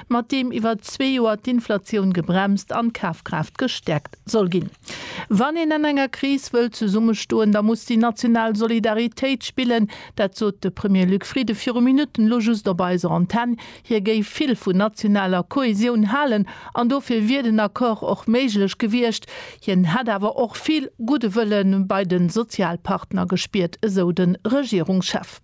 mat deem iwwer zwee Joer d'Inflatioun gebremst an d'Kafkraaft gestäerkt soll ginn. Wann een an enger Kris wëll zesummestoen, da muss déi national Solidaritéit spillen. Dat sot de Premier Luc Frieden viru Minutten elo just op eiser Antenn. Hie géif vill vun nationaler Kohäsioun halen an dofir wier den Accord och méiglech gewiescht. Hien hätt awer och vill gudde Wëlle bei de Sozialpartner gespiert, esou de Regierungschef.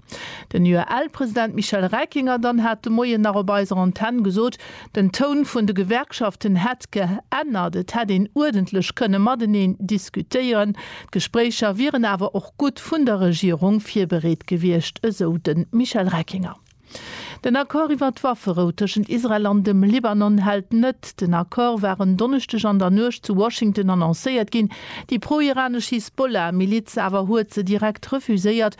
Den UEL-President Michel Reckinger dann hat de Moien nach op eiser Antenn gesot, den Toun vun de Gewerkschaften hätt geännert, et hätt een uerdentlech kënne mateneen diskutéieren, d'Gespréicher wieren awer och gutt vun der Regierung virbereet gewiescht, esou de Michel Reckinger. Den Accord iwwer d'Wafferou tëschent Israel an dem Libanon hält net. Den Accord war en Donneschdeg an der Nuecht zu Washington annoncéiert ginn, déi pro-iranesch Hisbollah-Miliz awer huet se direkt refuséiert,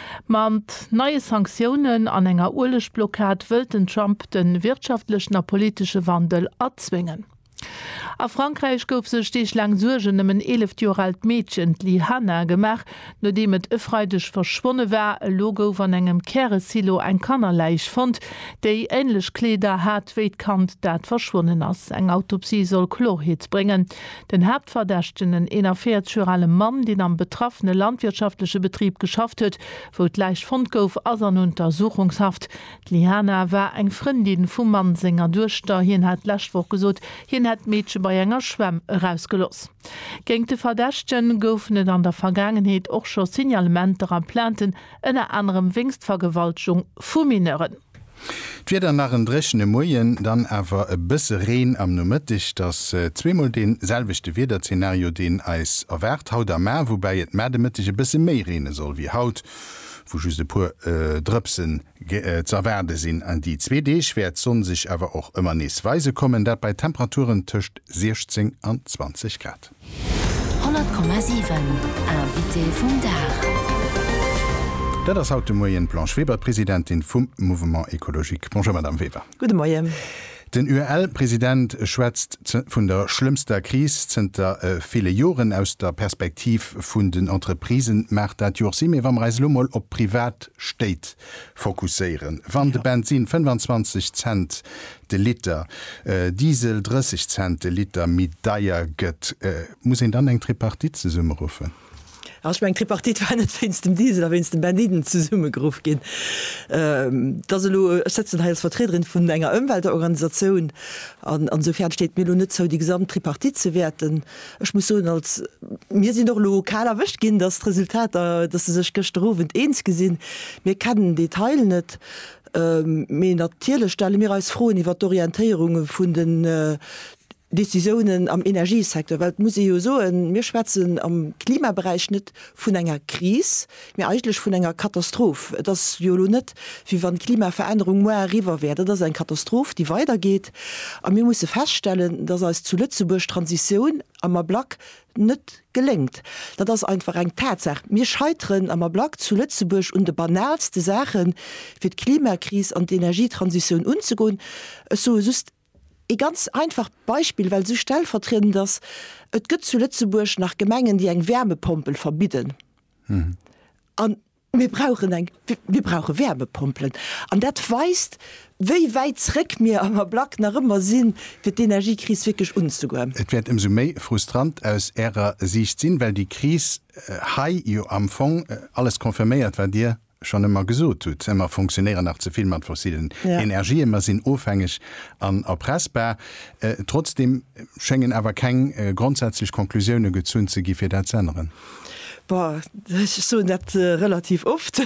Mat neie Sanktiounen an enger Uelegblockad wëllt den Trump de wirtschaftlechen a politesche Wandel erzwéngen. A Frankräich gouf sech Deeg laang Suergen ëm en 11 Joer aalt Meedchen, d'Li Hanna, gemaach, nodeem et e Freideg verschwonne war. Elo gouf an engem Käresilo eng Kannerläich fonnt, déi änlech Kleeder hat wéi d'Kand, dat verschwonnen ass. Eng Autopsie soll Klorheet bréngen. Den Haaptverdächtegen, en 41 Joer ale Mann, deen am betraffene landwirtschaftleche Betrib geschafft huet, wou d'Läich fonnt gouf, ass an Untersuchungshaft. D'Liana war eng Frëndin vum Mann senger Duechter. Hien hat d'lescht Woch gesot, hien hätt d'Meedche bei enger Schwämm erausgelooss. Géint de Verdächtege goufen et an der Vergaangenheet och scho Signalementer a Plainten, ënner anerem wéinst Vergewaltegung vu Mineuren. D'Wieder nach en dréchene Moien, dann awer e bësse Reen am Nomëtteg. Et ass zweemol dee selwechte Wiederzenario, deen eis erwaart haut a mar, woubäi et mar de Mëtteg e bësse méi reene soll wéi haut, wou just e puer Drëpsen z'erwaarde sinn. An déi zwee Deeg wäert d'Sonn sech awer och ëmmer nees weise kommen, dat bei Temperaturen tëscht 16 an 20 Grad. 100,7 Invité vum Dag. Dat ass haut de Moien d'Blanche Weber, d'Presidentin vum Mouvement Ecologique. Bonjour Madame Weber. Gudde Moien. Den UEL-President schwätzt vun der schlëmmster Kris zënter ville Joren. Aus der Perspektiv vun den Entreprisen maacht dat jo och Sinn. Mee wa mer eis elo mol op d'Privatstéit fokusséieren, Wann de Bensin 25 Cent de Liter Diesel 30 Cent de Liter méi deier gëtt, muss een dann eng Tripartite zesummeruffen? Ech mengen, d'Tripartite war net wéinst dem Diesel a wéinst dem Bensinn zesummegeruff ginn. Et ass elo, ech sëtzen hei als Vertriederin vun enger Ëmweltorganisatioun an esoufanen steet et mir elo net zou, déi gesamt Tripartite ze wäerten. Ech muss soen, als, mir sinn och elo kal erwëscht ginn, datt d'Resultater, datt se sech gëschter Owend eens gi sinn. Mir kennen den Detail net. Mee natierlech stelle mir eis Froen iwwert d'Orientéierung vun den Décisiounen am Energiesecteur. Well et muss ee jo soen, mir schwätzen am Klimaberäich net vun enger Kris, mee eigentlech vun enger Katastroph. Et ass jo elo net, wéi wann d'Klimaverännerung muer eriwwer wär. Dat ass eng Katastroph, déi weidergeet. A mir musse feststellen, dass eis zu Lëtzebuerg d'Transitioun am Ablack net geléngt. Dat ass einfach eng Tatsaach. Mir scheiteren am Ablack zu Lëtzebuerg un de banalste Saachen, fir d'Klimakris an d'Energietransitioun unzegoen. Ech soe just ee ganz einfacht Beispill, well esou stellvertriedend ass, Et gëtt zu Lëtzebuerg nach Gemengen, déi eng Wärmepompel verbidden. Mir brauchen eng, mir brauche Wärmepompelen. An dat weist, wéi wäit zréck mir am Ablack nach ëmmer si fir d'Energiekris wierklech unzegoen. Et wäert ëmsou méi frustrant aus Ärer Siicht sinn, well déi Kris hei jo am Fong alles confirméiert, wat Dir schonn ëmmer gesot hutt, Mer funktionéieren nach ze vill mat fossillen Energien, mer sinn ofhängeg an erpressbar. Trotzdeem schéngen awer keng grondsätzlech Conclusioune gezunn ze gi fir dat z'änneren. Boah, ech soen dat relativ oft.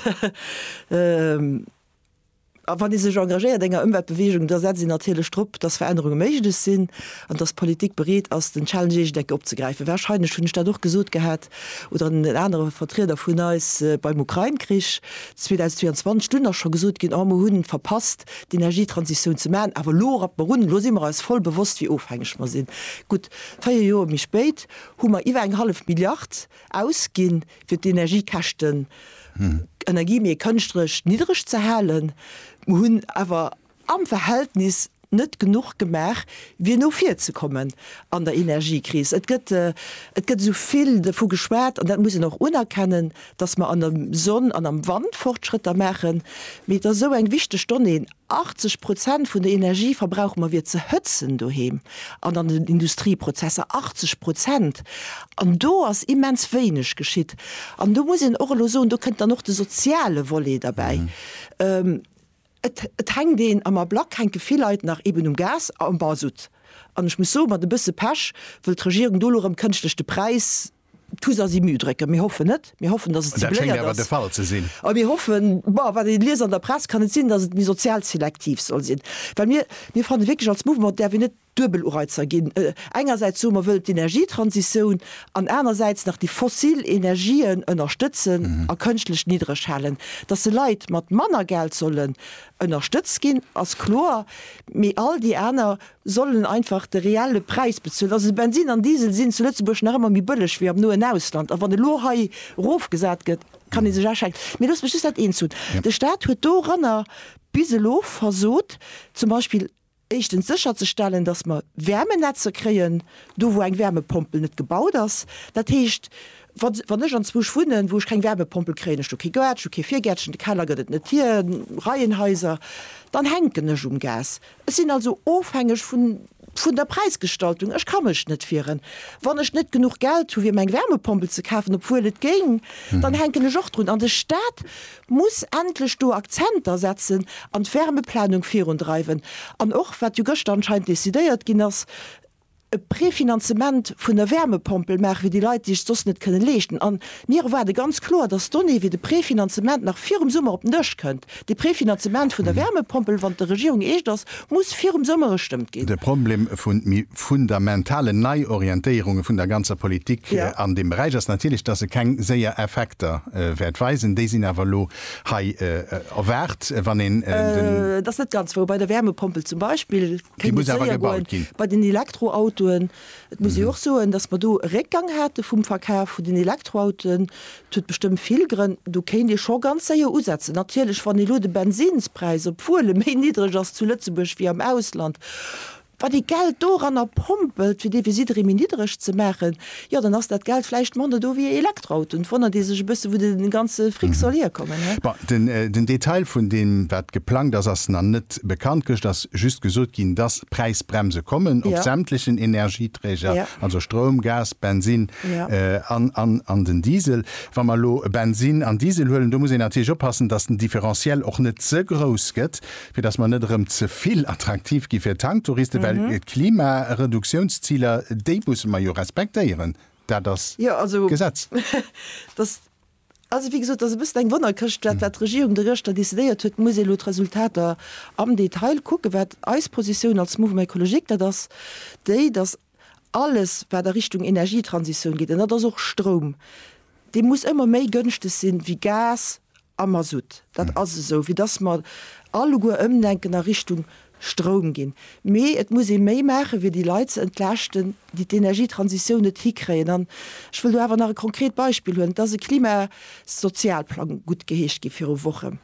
A wann ee sech engagéiert enger Ëmweltbeweegung, da setzt een natierlech drop, dass Verännerunge méiglech sinn an dass d'Politik bereet ass, den Challenge Eeschdecke opzegräifen. Warscheinlech hunn ech dat och gesot gehat oder en anere Vertrieder vun eis beim Ukrain-Krich 2022. Dunn ass scho gesot ginn, oh, mer hu verpasst, d'Energietransitioun ze maachen, awer elo rappe mer un, elo si mer eis voll bewosst, wéi ofhängeg mer sinn. Gutt, véier Joer méi spéit hu mer iwwer eng hallef Milliard ausginn, fir d'Energiekäschten, d'Energie méi kënschtlech niddereg ze halen. Mer hunn awer am Verhältnis net genuch gemaach, fir no vir ze kommen an der Energiekris. Et gëtt, et gëtt esou vill dovu geschwat, an dat muss een och unerkennen, dass mer an der Sonn an am Wand Fortschrëtter maachen, mee et ass esou eng wichteg Donnée, 80 Prozent vun der Energie verbrauche mer fir ze hëtzen doheem an an den Industrieprozesser, 80 Prozent! An do ass immens wéineg geschitt. An do muss een och elo soen, do kënnt dann och de soziale Volet derbäi. Et, et hänkt een, am Ablack hänke vill Leit nach eben um Gas a um Masutt. An ech muss soe mat e bësse Pech wëll d'Regierung do elo erëm kënschtlech de Präis D'Tus ass i Müh drécken. Mir hoffen net. Mir hoffen, datt et si bléiert ass. Dat schéngt awer de Fall ze sinn. A mir hoffen, bon, wat ee liest an der Press, kann et sinn, datt et méi sozial selektiv soll sinn. Well mir, mir fanne wierklech als Mouvement däerf een net Duebelureizer ginn. Engersäits soe mer, wëll d'Energietransitioun an anersäits nach déi fossil Energien ënnerstëtzen a kënschtlech niddreg halen. Datt se Leit mat manner Geld sollen ënnerstëtzt ginn, ass kloer. Mee all déi aner sollen einfach de reelle Präis bezuelen. Also de Bensin an Diesel sinn zu Lëtzebuerg nach ëmmer méi bëlleg wéi am noen Ausland. A wann elo hei erofgesat gëtt, kann ee sech a schenken. Mee loosst mech just dat eent soen, De Staat huet doranner bis elo versot, zum Beispill éischtens sécherzestellen, datt mer Wäermenetzer kréien do, wou eng Wäermepompel net gebaut ass. Dat heescht, wa wann ech anzwousch wunnen, wou ech keng Wäermepompel kréien, ech hu kee Gaart, ech hu kee Virgäertchen, de Keller gëtt et net hir, Reihenhaiser, dann hänken ech um Gas. Ech sinn also ofhängeg vun vun der Präisgestaltung. Ech ka mech net wieren. Wann ech net genuch Geld hu fir meng Wärmepompel ze kafen, obwuel et géing, dann hänken ech och drun. An de Staat muss endlech do Akzenter setzen an d'Wärmeplanung virundreiwen. An och, wat jo gëschter anscheinend decidéiert ginn ass, e Prefinanzement vun der Wärmepompel maache fir déi Leit, déi sech soss net kënne leeschten. A mir erwaarde ganz kloer, datt d'Donnée fir de Prefinanzement nach virum Summer op den Dësch kënnt. De Prefinanzement vun der Wärmepompel, wann et der Regierung eescht ass, muss virum Summer gestëmmt ginn. De Problem vu méi fundamentalen Neiorientéierunge vun der ganzer Politik an deem Beräich ass natierlech, datt e keng séier Effekter wäert weisen. Déi sinn awer elo hei erwaart, wann een den. Dat ass net ganz wouer. Bei der Wärmepompel zum Beispill. Déi muss awer gebaut ginn. Bei den Elektroautoen, et muss ee jo och soen, datt mer do e Réckgang hate vum Verkaf vun den Elektroautoen. Dat huet bestëmmt vill Grënn. Do kéint ee scho ganz séier usetzen. Natierlech, wann elo de Bensinnspräis, obwuel e méi niddreg ass zu Lëtzebuerg wéi am Ausland, wann ee Geld doranner pompelt, fir dee fir jidderee méi niddreg ze maachen, Jo, dann ass dat Geld vläicht manner do wéi e Elektroauto. Et wonnert ee sech e bësse wou de ganze Fric soll hierkommen, ne? Bon, den Detail vun deem wat geplangt ass, ass nach net bekannt. Gëscht ass just gesot ginn, dass Präisbremse kommen op sämtlechen Energieträger, also Stroum, Gas, Bensinn an den Diesel. Wa mer elo Bensinn an Diesel huelen, do muss een natierlech oppassen, dass den Differentiel och net ze grouss gëtt, fir dass mer net erëm ze vill attraktiv gi fir Tanktouristen, well d'Klimareduktiounsziler, déi musse mer jo respektéieren, dat ass d'Gesetz. Also, wéi gesot, et ass e bëssen eng Wonnerkëscht, dat wat d'Regierung do gëschter decidéiert huet. Et muss ee elo d'Resultater am Detail kucken. Wat eis Positioun als Mouvement écologique, dat ass déi, dass Alles wat a Richtung Energietransitioun geet, an dat ass och Stroum, dee muss ëmmer méi gënschteg sinn wéi Gas a Masutt. Dat ass esou, fir datt mer alleguer ëmdenken a Richtung Stroum ginn. Mee et muss ee méi maachen, fir déi Leit ze entlaaschten, déi d'Energietransitioun net hikréien. An ech wëll do awer nach e konkret Beispill huelen. Et ass e Klimasozialplang guttgeheescht gi viru Wochen.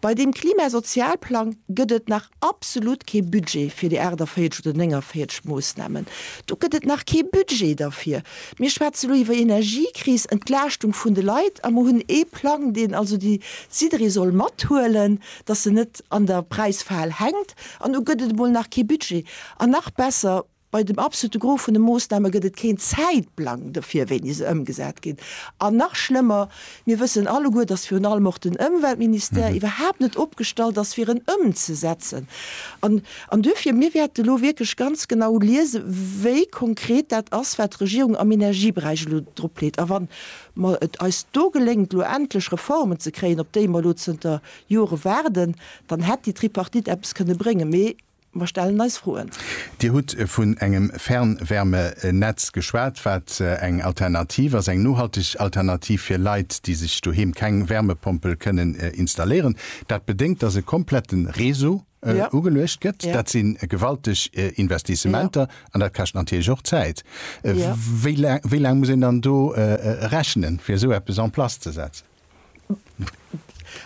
Bei deem Klimasozialplang gëtt et nach absolut kee Budget fir déi 48 oder 49 Moosnamen. Do gëtt et nach kee Budget derfir. Mir schwätze lo iwwer Energiekris, Entlaaschtung vun de Leit a mer hunn ee Plang, deen also déi jidderee soll mathuelen, dass en net an der Präisfal hänkt. An du gëtt et emol nach kee Budget. An nach besser, Bei dem absolute Gros vun de Moossname gëtt et keen Zäitplang dofir, wéini se ëmgesat ginn. An nach schlëmmer, mir wëssen alleguer, dass virun allem och den Ëmweltministère iwwerhaapt net opgestallt ass, fir en ëmzesetzen. An duerfir, mir wäerte elo wierklech ganz genau liese wéi konkret dat ass, wat d'Regierung am Energieberäich elo dropleet. A wann mer et eis do geléngt, elo endlech Reformen ze kréien, op déi mer elo zënter Jore waarden, dann hätt déi Tripartite eppes kënne bréngen. Mee Mer stellen eis Froen. Dir hutt vun engem Fernwärmenetz geschwat, wat eng Alternativ ass, eng nohalteg Alternativ fir Leit, déi sech doheem keng Wärmepompel kënnen installéieren. Dat bedéngt, dass e komplette Réseau ugeluecht gëtt. Dat si gewalteg Investissementer an dat kascht natierlech och Zäit. Wéi laang muss een dann do rechnen, fir esou eppes en place ze setzen?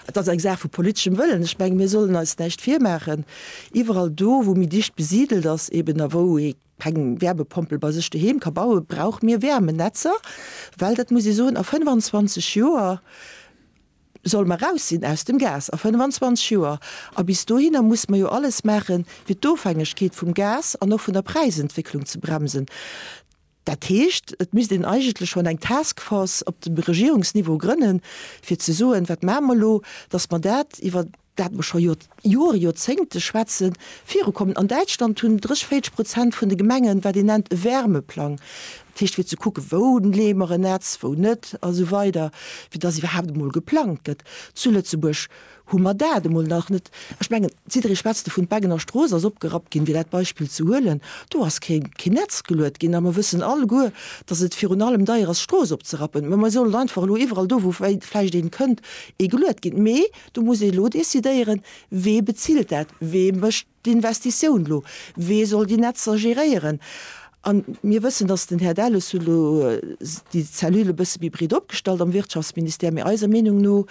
Et ass eng Saach vu politeschem Wëllen. Ech menge mir sollen eis näischt virmaachen, iwwerall do wou méi dicht besidelt ass eben a wou ee keng Wärmepompel bei sech doheem ka bauen, brauche mir Wärmenetzer, well dat muss ee soen, a 25 Joer solle mer raus sinn aus dem Gas, a 25 Joer. A bis dohinner musse mer jo alles maachen, fir d'Ofhängegkeet vum Gas an och vun der Präisentwécklung ze bremsen. Dat heescht, et misst een eigentlech schonn eng Taskforce op dem Regierungsniveau grënnen, fir ze soen, Wat maache mer elo, datt mer dat, iwwer dat mer scho Jore, Joerzéngte schwätzen, virukommen? An Däitschland hunn 30, 40 Prozent vun de Gemengen, wat een nennt e Wärmeplang, dat heescht fir ze kucken, wou leeë mer en Netz, wou net a sou weider, fir datt iwwerhaapt emol geplangt gëtt. Zu Lëtzebuerg Hu mer dat emol nach net. Ech mengen, d'Sidri schwätzt dovun, d'Beggener Strooss ass opgerappt ginn, fir dat Beispill ze huelen. Do ass kee Netz geluet ginn a mer wëssen alleguer, datt et virun allem deier ass, d'Strooss opzerappen. Mä mer sollen einfach elo iwwerall do, wou vläicht ee kënnt, ee geluet ginn. Mee do muss ee elo decidéieren, Wee bezilt dat? Wee mécht D'Investitioun elo, wee soll déi Netzer geréieren? A mir wëssen, dass den Här Delles huet elo déi Cellule e bësse méi breet opgestallt am Wirtschaftsministère, mee eiser Meenung no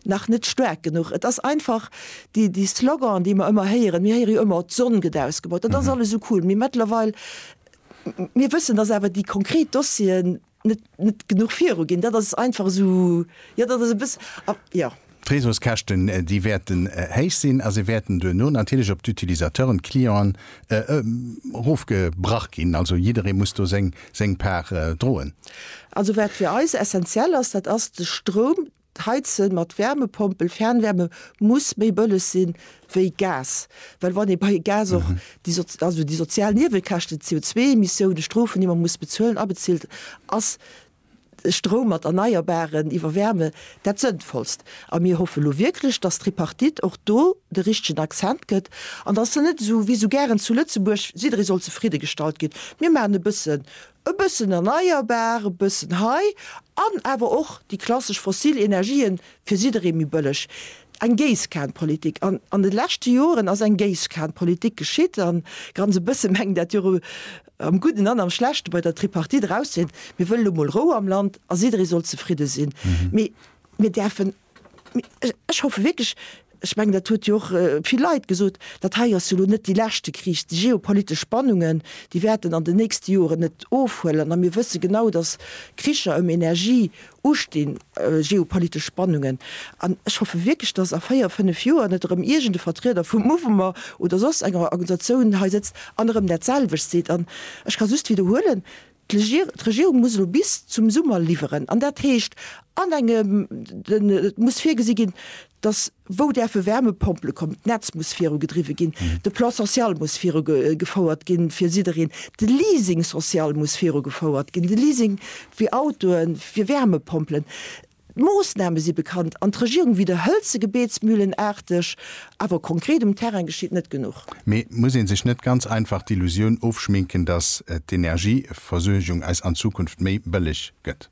nach net staark genuch. Et ass einfach déi Sloganen, déi mer ëmmer héieren. Mir héiere jo ëmmer, d'Sonn gëtt ausgebaut, dat ass alles esou cool, mee mëttlerweil, mir wëssen, dass awer déi konkret Dossieren, net net genuch viru ginn. Dat ass einfach esou, jo dat ass e bëss, a jo. D'Réseauskäschten, déi wäerten héich sinn a se wäerten duerno natierlech op d'Utilisateuren, d'Clienten, erofgebrach ginn. Also jidderee muss do seng seng Part droen. Also wat fir eis essenziell ass, dat ass de Stroum. D'Heizen mat Wärmepompel, Fernwärme, muss méi bëlleg si wéi Gas, well wann ee bei Gas och déi, also déi sozial Niewekäschten, d'CO2-Emissiounen, d'Strofen, déi mer muss bezuelen, abezilt, ass Stroum mat Erneierbaren iwwer Wärme dat Sënnvollst. A mir hoffe lo wierklech, dass d'Tripartite och do de richtegen Accent gëtt an dass se net esou wéi esou gären zu Lëtzebuerg, jidderee soll zefridde gestallt ginn, mir maachen e bësse E bëssen erneierbar, e bëssen hei an awer och déi klassesch fossil Energien, fir jidderee méi bëlleg. Eng Géisskanenpolitik. An an de leschte Joren ass eng Géisskanenpolitik geschitt. A ganz e bësse mengt dat jo am Gudden an am Schlechte bei der Tripartite erauszesinn, mir wëllen elo mol Rou am Land a jidderee soll zefridde sinn. Mee mir däerfen Ech hoffe wierklech, ech mengen dat huet jo och vill Leit gesot, dat hei ass jo elo net dee leschte Krich. Déi geopolitesch Spannungen, déi wäerten an den nächste Joren net ofhuelen. A mir wësse genau, datt Kricher ëm Energie ustinn, geopolitesch Spannungen. An ech hoffe wierklech, datt a véier, fënnf Joer net erëm iergend e Vertrieder vum Mouvement oder soss enger Organisatioun hei sëtzt an erëm dat selwecht seet. An ech ka just widderhuelen, D'Regierung muss elo bis zum Summer liwweren an dat heescht an engem, et muss virgesi ginn, datt wou däerfe Wärmepompele kommen, d'Netz muss viru gedriwwe ginn, de Plan social muss viru gefouert ginn fir jiddereen, de Leasing social muss viru gefouert ginn, de Leasing fir Autoen, fir Wärmepompelen. D'Moossname si bekannt an d'Regierung widderhëlt se gebeetsmühlenaarteg, awer konkret um Terrain geschitt net genuch. Mee muss ee sech net ganz einfach d'Illusioun ofschminken, datt d'Energieversuergung eis an Zukunft méi bëlleg gëtt?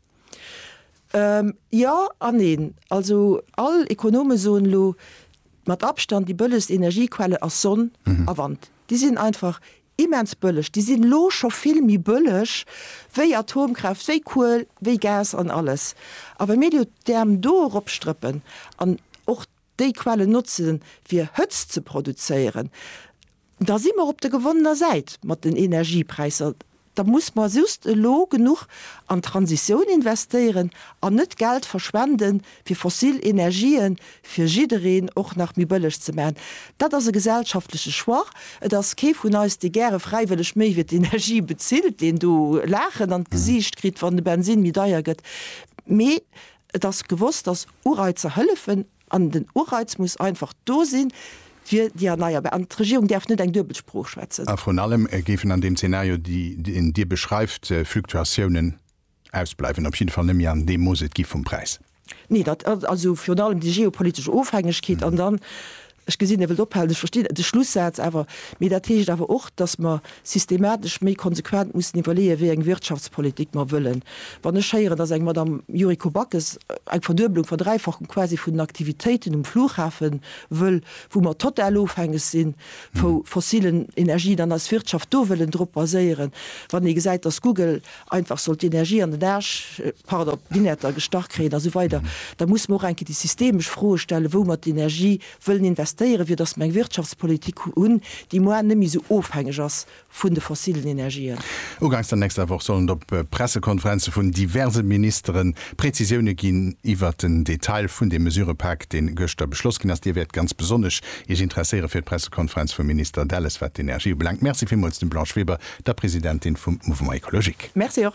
Jo an neen. Also all Ekonome soen elo, mat Abstand déi bëllegst Energiequelle ass Sonn a Wand. Déi sinn einfach Immens bëlleg, déi sinn elo scho vill méi bëlleg wéi Atomkraaft, wéi Kuel, wéi Gas an alles. A wa mir elo d'Äerm do eropstrëppen an och déi Quellen notze fir Hëtzt ze produzéieren, da si mer op der gewonnener Säit mat den Energiepräisser. Da muss mer just elo genuch an d'Transitioun investéieren an net Geld verschwende fir fossil Energië fir jiddereen och nach méi bëlleg ze maachen, dat ass e gesellschaftleche Choix. Et ass kee vun eis, dee gäre fräiwëlleg méi fir d'Energie bezilt, deen do Laachen an d'Gesiicht kritt, wann de Bensin méi deier gëtt. Mee et ass gewosst, dass Ureizer hëllefen an den Ureiz muss einfach do sinn fir déi erneierbar. An d'Regierung däerf net eng duebel Sprooch schwätzen. A vrun allem géifen an deem Zeenario, deen Dir beschreift, Fluktuatiounen Ausbleiwen op jidde Fall net méi an deem Mooss et gi vum Präis. Nee, dat ass also virun allem déi geopolitesch Ofhängegkeet. An dann, ech gesinn, Dir wëllt ophalen, ech verstinn de Schlussaz awer, mee dat heescht awer och, datt mer systematesch méi konsequent mussen iwwerleeën, wéi eng Wirtschaftspolitik mer wëllen. Wann ech héieren, datt eng Madame Yuriko Backes eng Verdueblung, Verdräifachung quasi vun den Aktivitéiten um Flughafe wëll, wou mer total ofhängeg si vu fossilen Energien an eis Wirtschaft do wëllen drop baséieren, wann ee gesäit, datt Google einfach soll d'Energie an den Aarsch, pardon, d'Innerter gestach kréien a sou weider, da muss mer och enke déi systemesch Froe stellen, wou mer d'Energie wëllen investéieren, fir dass mer eng Wirtschaftspolitik hunn, déi moar net méi sou ofhängeg ass vun de fossilen Energien. Uganks der nächster Woch sollen et op Pressekonferenze vun diverse Ministere Präzisioune ginn iwwert den Detail vun deem Mesurëpak, dee gëschter beschloss ginn ass. Dir wäert ganz besonnesch Iech interesséiere fir d'Pressekonferenz vum Minister Delles, wat d'Energie ubelaangt. Merci villmools dem Blanche Weber der Presidentin vum Mouvement Ecologique. Merci och.